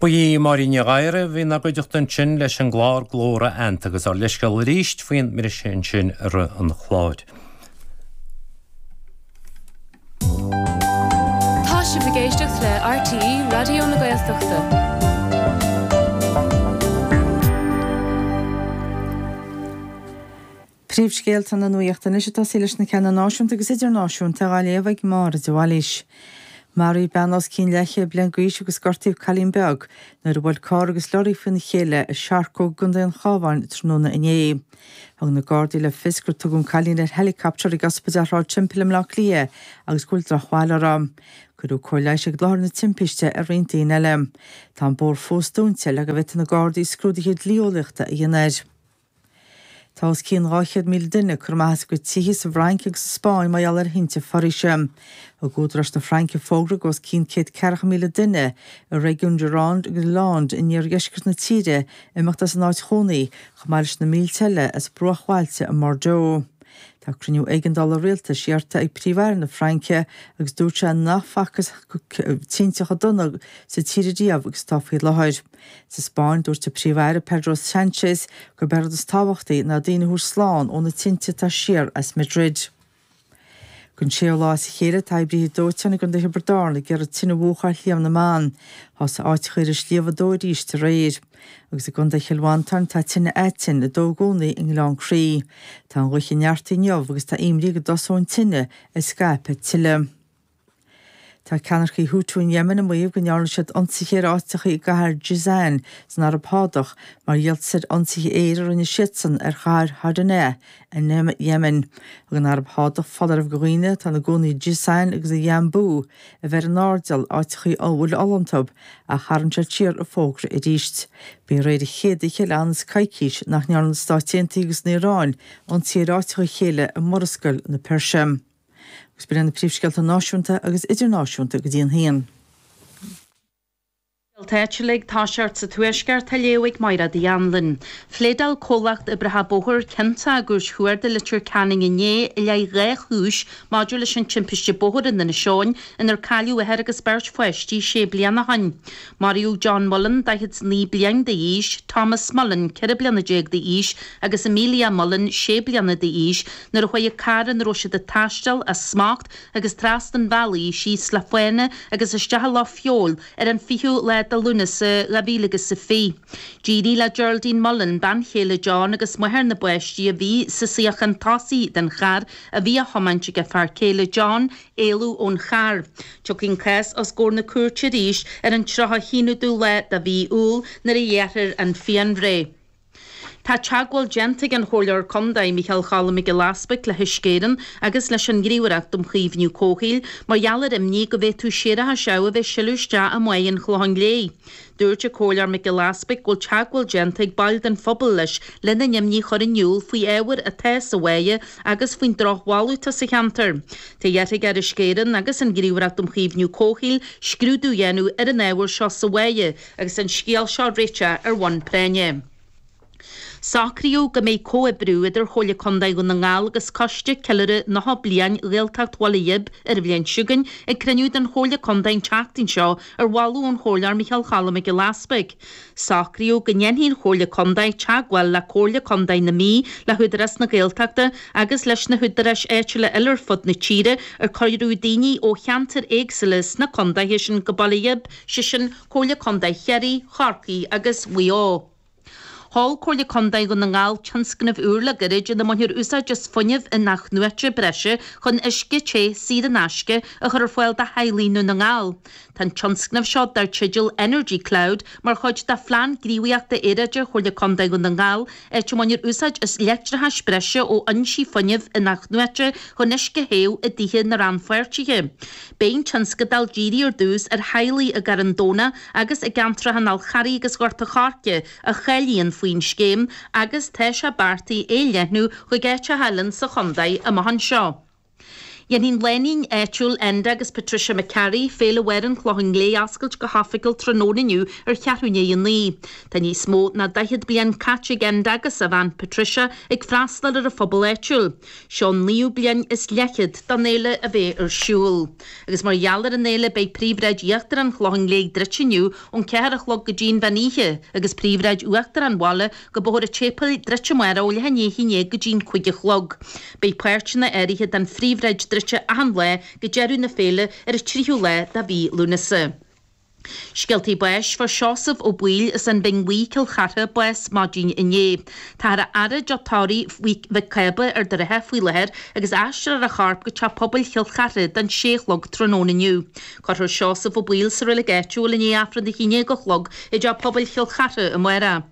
Ba í Máirín Ní Ghadhra a bhí in bhur gcuideachta ansin leis an gclár Glór a Fheannta agus ár leithscéal arís faoin mbriseadh ansin i rith an chláir. Tá sibh ag éisteacht le RTÉ Raidió na Gaeltachta. Príomhscéalta na Nuachta anois ag tosaí leis na ceanna náisiúnta agus idirnáisiúnta á léamh ag Máire de Bhailís. Maraíodh bean os cionn leathchéad bliain d'aois agus gortaíodh cailín beag nuair a bhuail carr agus leoraí faoina chéile i Searcóg i gContae an Chabháin tráthnóna inné. Thug na Gardaí le fios gur tugadh an cailín ar helicopter ag Ospidéal Shráid Temple i mBleá Cliath agus go bhfuil drochbhail uirthi. Cuireadh cóir leighis ag láthair na timpiste ar roinnt daoine eile. Tá an bóthar fós dúnta le go bhféadfaidh na Gardaí scrúduithe dlí-eolaíochta a dhéanamh air. Tá os cionn 200,000 duine curtha amach as a gcuid tithe sa bhFrainc agus sa Spáinn mar gheall ar thinte foraoise. Thug údaráis na Fraince fógra do os cionn céad ceathracha míle duine i réigiún Gironde agus Landes in iardheisceart na tíre imeacht as a n-áit chónaí, chomh maith leis na mílte eile as bruachbhailte i mBordeaux. Tá cruinniú éigeandála rialtais iarrta ag Príomh-Aire na Fraince agus dúirt sé nach facthas tinte chomh dona sa tír ariamh agus atá faoi láthair. Sa Spáinn, dúirt an Príomh-Aire Pedro Sánchez gurb é an rud is tábhachtaí ná daoine a thabhairt slán ó na tinte atá siar as Madrid. Don séú lá as a chéile, tá oibrithe dóiteáin i gContae Thiobraid Árann ag iarraidh tine a mhúchadh ar Shliabh na mBan. Thosaigh áiteacha ar an sliabh ag dó arís aréir. Agus i gContae Chill Mhantáin tá tine aitinn ag dó i gcónaí i nGleann Crí. Tá an ghaoth ag neartú inniu agus tá imní go dtosóidh an tine ag scaipeadh tuilleadh. Tá ceannaircigh Houthi in Yemen ag maíomh go ndearna siad ionsaithe ar áiteacha i gcathair Jizan san Araib Shádach mar dhíoltas ar ionsaithe aeir a rinne siadsan ar chathair Hodeida in Yemen. Thug an Araib Shádach foláireamh do dhaoine atá ina gcónaí i Jizan agus i Yanbu a bheith san airdeall, áiteachaí a bhfuil ola iontu, ach tharraing siad siar an fógra arís. B'í aréir an chéad oíche le ionann is coicís nach ndearna na Stáit Aontaithe agus an Iaráin ionsaí ar áiteacha a chéile i Murascaill na Peirse. Agus b'in iad na príomhscéalta náisiúnta agus idirnáisiúnta go dtí an haon. Scéalta áitiúla ag tosacht sa Tuaisceart á léamh ag Máighread Uí Annluain. Phléadáil comhlacht oibrithe bóthair ciontach i gCúirt Chuarda Leitir Ceanainn inné i leith dhá chúis maidir leis an timpiste bóthair in Inis Eoghain inar cailleadh athair agus beirt pháistí sé bliana ó shin. Maraíodh John Mullan, 49 bliain d'aois, Tomás Mullan, 14 bliana d'aois, agus Amelia Mullan, 6 bliana d'aois, nuair a chuaigh an carr ina raibh siad ag taisteal as smacht agus trasna an bhealaigh síos le fána agus isteach i Loch Feabhail, Ar an 20ú lá de Lúnasa 2020, d'éirigh le Geraldine Mullan, bean chéile John agus máthair na bpáistí a bhí sa suíochán tosaigh den charr a bhí á thiomáint ag a fear céile John, éalú ón charr. Tiocfaidh an cás os gcomhair na cúirte arís ar an 31ú lá de mhí Iúil nuair a ghearrfar an phianbhreith. Tá teagmháil déanta ag an Chomhairleoir Contae Micheál Choilm Mac Giolla Easbuig le hUisce Éireann agus leis an Ghníomhaireacht um Chaomhnú Comhshaoil mar gheall ar imní go bhféadfadh séarachas amh a bheith ag sileadh isteach i mbáighe an Chlocháin Léith. Dúirt an Comhairleoir Mac Giolla Easbuig go bhfuil teagmháil déanta ag baill den phobal leis lena n-imní a chur in iúl faoi ábhair atá sa bháighe agus faoin drochbholadh atá sa cheantar. Tá iarrtha ar Uisce Éireann agus an Ghníomhaireacht um Chaomhnú Comhshaoil scrúdú a dhéanamh ar an ábhar seo sa bháighe Agus an scéal seo a réiteach ar bhonn práinne. Socraíodh go mbeidh comhoibriú idir Chomhairle Contae Dhún na nGall agus Coiste Ceiliúrtha 90 Bliain Ghaeltacht Bhaile Ghib, ar an bhliain seo chugainn, ag cruinniú den Chomhairle Contae an tseachtain seo ar mholadh ón Chomhairleoir Micheál Choilm Mac Giolla Easbuig. Socraíodh go ndéanfaidh an Chomhairle Contae teagmháil le Comhairle Contae na Mí, le hÚdarás na Gaeltachta agus leis na húdaráis áitiúla eile ar fud na tíre ar cuireadh daoine ó cheantair éagsúla sna contaetha sin go Baile Ghib, sé sin Comhairle Contae Chiarraí, Chorcaí agus Mhaigh Eo. Mhol Comhairle Contae Dhún na nGall tionscnamh úr le gairid ina mbainfear úsáid as fuinneamh in-athnuaite breise chun uisce te saor in aisce a chur ar fáil do theaghlaigh i nDún na nGall. Tá an tionscnamh seo, dar teideal Energy Cloud, mar chuid de Phlean Gníomhaíochta Aeráide Chomhairle Contae Dhún na nGall áit a mbainfear úsáid as leictreachas breise ó fhoinsí fuinnimh in-athnuaite chun uisce a théamh i dtithe na rannpháirtithe. Beidh an tionscadal dírithe ar dtús ar theaghlaigh i gCarn Domhnach agus i gceantracha an Fhál Charraigh agus Ghort an Choirce a cháilíonn faoin scéim agus tá sé beartaithe é a leathnú chuig áiteacha eile sa chontae amach anseo. Dhéanfaidh an lánúin áitiúil Enda agus Patricia McCarry, Féile Mháire an Chlocháin Léith a oscailt go hoifigiúil tráthnóna inniu ar cheathrú i ndiaidh a naoi. Tá níos mó ná daichead bliain caite ag Enda agus a bhean Patricia ag freastal ar an phobal áitiúil. Seo an naoú bliain is leathchéad don fhéile a bheith ar siúl. Agus mar gheall ar an fhéile beidh Príomhshráid Íochtar an Chlocháin Léith druidte inniu ón ceathair a chlog go dtí'n mheán oíche agus Príomhshráid Uachtar an Bhaile go Bóthar an tSéipéil druidte amárach ó leath i ndiaidh a haon déag go dtí'n cúig a chlog. Beidh páirteanna áirithe den phríomhshráid druidte achan lá go deireadh na féile ar an tríú lá de mhí Lúnasa. Scéaltaí Báis Fuair Seosamh Ó Baoill as an Bhinn Bhuí, Cill Chartha, bás maidin inné. Táthar á fhaire i dTeach Tórraimh Mhic Cába Ard an Rátha faoi láthair agus aistreofar a chorp go teach pobail Chill Chartha don sé a chlog tráthnóna inniu. Cuirfear Seosamh Ó Baoill sa reilig áitiúil i ndiaidh Aifreann a haon déag a chlog i dteach pobail Chill Chartha amárach